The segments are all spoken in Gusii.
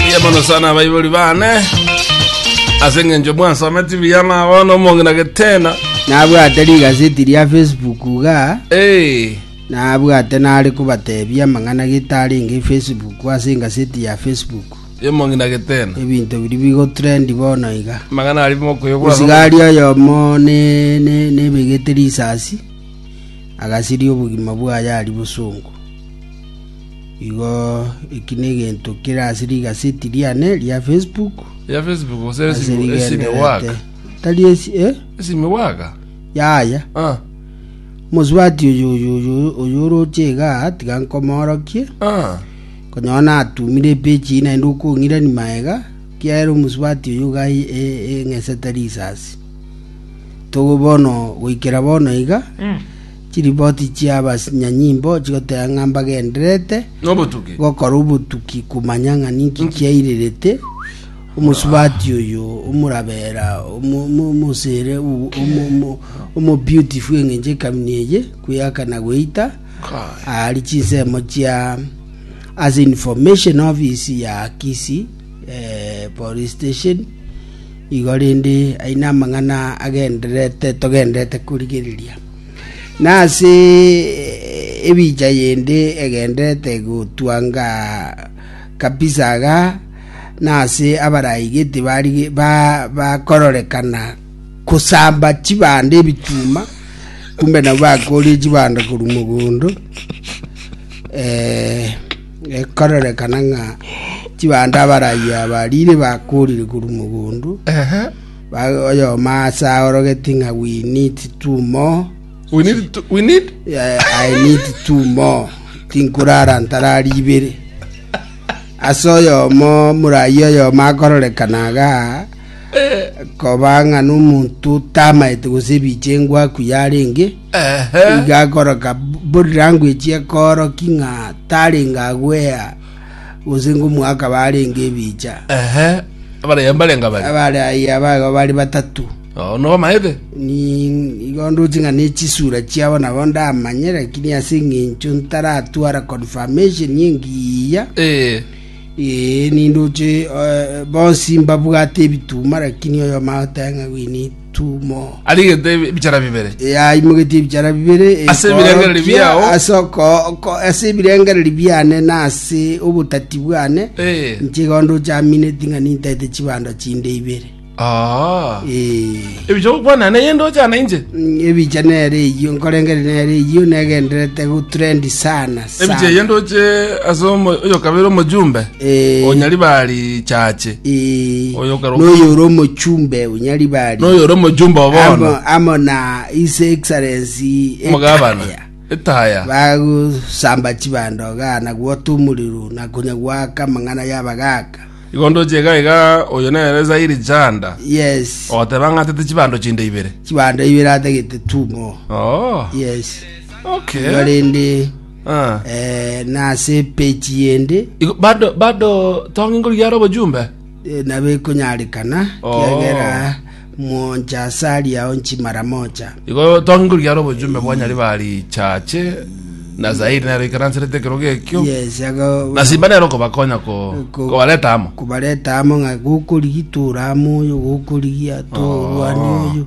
Mbuya mono sana abaibori bane ase eng'encho mwansome tibi yana bono omong'ina getena nabwate rigaseti ria facebook iga Eh, nabwate nare kobatebia amang'ana getarenge facebook ase engaseti ya facebook y'omong'ina getena ebinto biri bigotrendi bono iga mang'ana ari mokoyobwa osigari oyomo ne- ne- nebegete risasi agasiria obogima bwaye ari bosongo Igo eki negento kere ase rigaseti riane ria Facebook. Ya Facebook gose ase esimi esimi rigenderete. waka. Tari esi eh? Esimi waka. Yaya. Ah. Mosubati oyo oyo oyo oyo oroche iga tiga nkomorokie. Ah. Konyora natumire epechi ina ende okong'irani maega kiaere omusubati oyo iga e- e- eng'esete risasi. Togo bono goikera bono iga Chiripoti chi'abasanyanyimbo chigoteba ng'a mbagendererete gokora obotuki komanya ng'a ninki kiairirete omosubati oyo omorabera omosere omobeautiful engencho ekamina eye kweyaka na gweita aari chinsemo chia as information office ya Kisii eh, police station igo rende aye namang'ana agendererete togendererete korigereria. na ase ebicha yende egendererete gotwanga kabisa iga, na ase abarai gete bakororekana kosamba chibando ebituma, kumbe nabwo bakorie chibando korwa mogondo eh, ekororekana ng'a chibando abarai aba rire bakorire korwa mogondo Oyomo aase aorogetie ng'a we need two more, I need two more, tinkorara ntarari ibere. Ase oyomo morai oyomo akororekana iga koba ng'a nomonto tamaete gose ebiche engwa akuya arenge, iga akoroka body language ekoorokia ng'a tarenge agwea. Gose ngomoaka barenge ebicha. Ehe, abaraiyo mbarenge abare. Abaraiyo abaigo bare batato. Oo, nobamayete? Nigo ndoche ng'a nechisura chiabo nabo ndamanye, lakini ase eng'encho ntaratwara confirmation engiya. Eh. Ee, nindoche eh, bonsi mbabwate ebituma, lakini oyomo agoteba ng'a gwini tumo. arigete ebi- ebichara bibere Eh, aimogetie ebichara bibere eh, Ase ebirengereri korokia, biao. ase oko- ko- ase ebirengereri biane na ase obotati bwane Eh. nchigondo chamineti ng'a nintaete chibando chinde ibere Ah. Eh, ebicha gokwana naye ndochana inche mm, ebicha nere eyio nkorengere nere eyio negenderete gutrendi sana Ebiche eye ndoche ase omo- oyokabere omojumbe Eh. onyari bari chache Eh, Oyo okero- noyo ore omochumbe onyari bari noyo ore omojumbe obono amo, amo na his excellency omogabana Etaya. etaya bagusamba chibandoga na gwota omorero na konya gwaka amang'ana yabagaka igo ndoche iga iga oyo nere zairi janda yes ogoteba ng'atete chibando chinde ibere chibando ibere atagete tumo oh yes Okay. igo rende Ah. eh, nase page yende Igo- bado bado tonge ngori yara obojumbe eh, nabo ekonyarekana Oh. kiagera moncha asari ao nchi mara mocha igo tonge ngori yara obojumbe bwanyari bari chache na zaidi nero ikaranserete ekero gekio yes aga na simba nero kobakonya ko Ko- kobareta amo kubareta amo ng'a gokorigia tore amo oyo gokorigia torwani oyo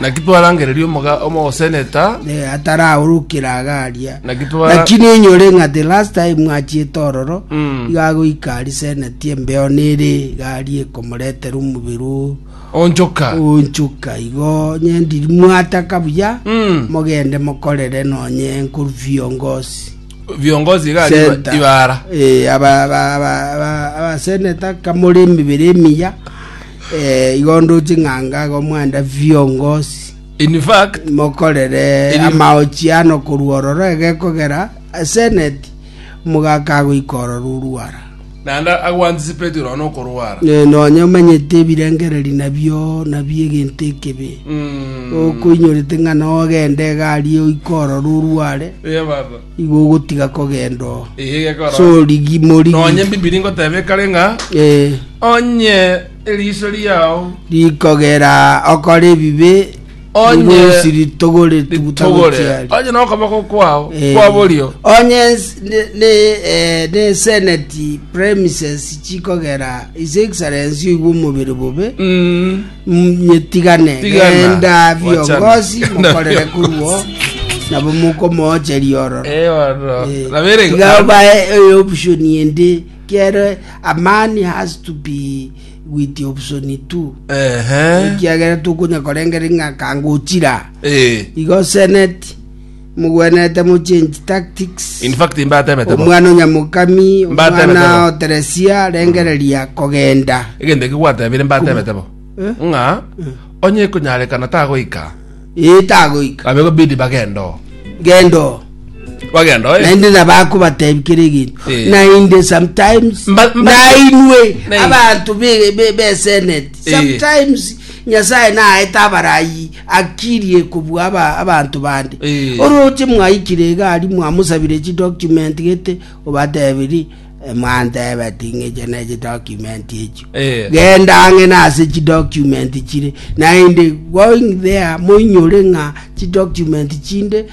Naki twarangereria omoga- omogoseneta, Eh, ataraorokera iga aria Naki twara- lakini enyore ng'a the last time mwachiete ororo Mm. iga agoika ari seneti embeo nere iga aria ekomoretera omobere o- onchoka. onchuka igo nyendiri mwataka buya Mm. mogende mokorere nonye nkoru viongozi Viongozi iga aria Center. ibara. Eh, aba- aba- aba- aba- abaseneta kamore emebere emiya Eh, igo nduche ng'a ngaga omwanda viongosi in fact mokorere Eri- amaochi ano korwa ororo egekogera seneti mogaka agoika ororo orwara naende aguantisipeti nono okorwara Eh, nonye omanyete ebirengereri nabio nabio egento ekebe Mm. okoinyorete ng'a nogende egari oika ororo orware Ye baba. Igo ogotiga kogenda oo, Eye gekora. sorigi morigi. Nonye Bibilia ngotebe kare ng'a Eh, onye eriso riao rikogera okora ebibe Onye- rirusi ritogore ritogore tugutagochiari onye nokoboko kwao Eh, kwa borio onye s- ne- ne- eh, ne senate premises chikogera his excellence oigwe omobere bobe Mm, Nyetigane Tigana, genda wachana. biongozi Genda mokorere biongozi. kuruo nabo mokomoocheria ororo Eh, ororo. Eh, Rabere- tiga obae eh, option ende kere a man has to be with the option two Ehe. ekiagera tokonya korengera ng'a kangochira Eh. igo senate Mogwenerete mochange tactics. In fact mbatebete bo. Omwana o Nyamokami, Mbatebete omwana bo. o Teresia, rengereria kogenda. Egento ekio gwatebire mbatebete bo. Eh? Ng'a onye ekonyarekana tagoika, Ee tagoika. abe gobidi bagende oo. Genda oo. Bagende oo. eh. naende nabakobatebi kere egento Eh. naende sometimes Mba- mba- nainwe Nei. abantu be- be- beseneti Eh. sometimes nyasaye naete abarayi akirie kobua aba- abanto bande. Eh. Oroche mwaikire egari mwamusabire chidocument gete, obatebiri "Eh, mwantebe ting'eche ne chidocument echio. Eh. Genda ang'e nase chidocument chire, naende going there moinyore ng'a chidocument chinde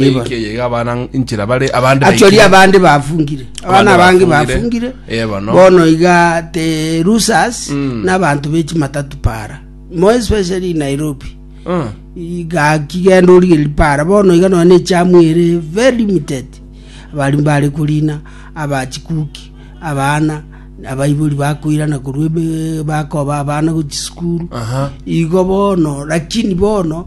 Eke ye abana nchira bare abande achori baikire. abande bafungire Abande abana abange bafungire. bafungire Eh, bono. bono iga te rusas Mm. n'abantu bechimatatu para mo especially in nairobi Mm. iga kigenda origeri para bono iga nonye echamu ere very limited abari mbare korina abachikuki abana abaibori bakoirana korwa ebe- bakoba abana gochisukuru Aha. igo bono lakini bono